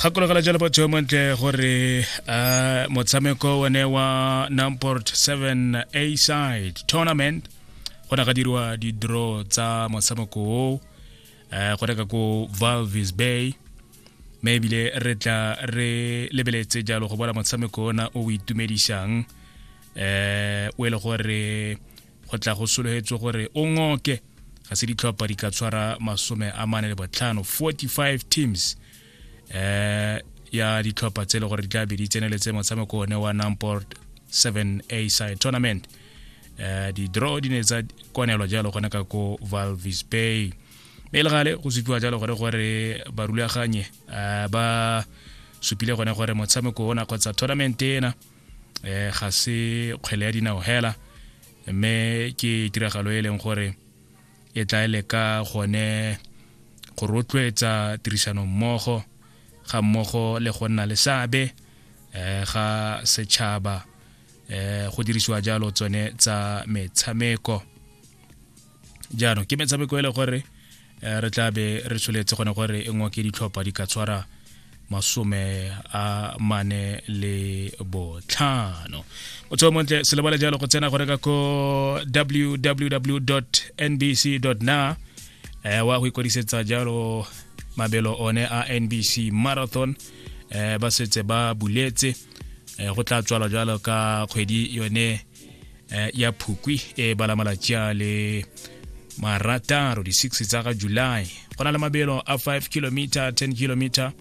gakologela jalo batho yo montle gore uh, motshameko one wa namport 7 a side tournament go na ga diriwa di-draw tsa motshameko o uh, go reka ko valvis bay mme ebile re tla re lebeletse jalo go bona motshameko ona o o itumedisang um o e le gore go tla go sologetswe gore o ngoke ga se ditlhopha di ka tshwara masome a mane le botlhano 45 teams eh ya ditlhopha tse le gore di tla be di tseneletse motshameko one wa namport 7 a side tournament eh di-draw di ne tsa kwanelwa jalo gone ka ko valvis bay mme e le gale go supiwa jalo gore gore barulaganye eh, ba supile gone gore motshameko ona kgotsa tournament ena eh ga se kgwele ya dinao hela mme ke tiragalo e leng gore e tla ele ka gone go rotloetsa tirisano mmogo ga mmogo le go nna le seabe eh ga setšhaba eh go dirisiwa jalo tsone tsa metshameko jaanong ke metshameko e le gore eh, re tla be re tsholetse gone gore e nngwe ke ditlhopha di ka tshwara masome a mane le botlhano o tsho montle se lebale jalo go tsena go reka ko www nbc na eh, wa go ikwadisetsa jalo mabelo one a nbc marathon eh, ba setse ba buletse eh, go tla tswalwa jalo ka kgwedi yone eh, ya phukwi e bala malatsi a le marataro di-six tsa ga july go na le mabelo a 5 kilometer 10 kilometer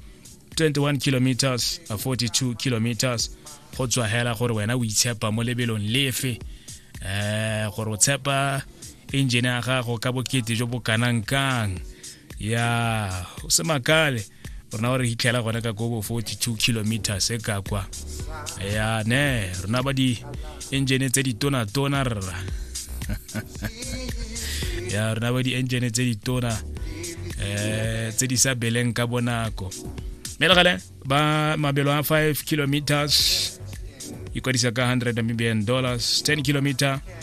21 kilometers a 42 kilometers go tswa hela gore wena o itshepa mo lebelong lefe eh gore o tshepa engine ya gago ka bokete jo bo kanang kang ya o se makale rona wa re hitlhela gone ka kobo 42 kilometers e ka kwa ya ne rona ba di engine tse ditona-tona rra ya rona ba di engine tse ditona eh tse di sa beleng ka bonako mme legale ba mabelo a 5 kilometers ikwadisa ka 100 namibian dollars 10 kilometer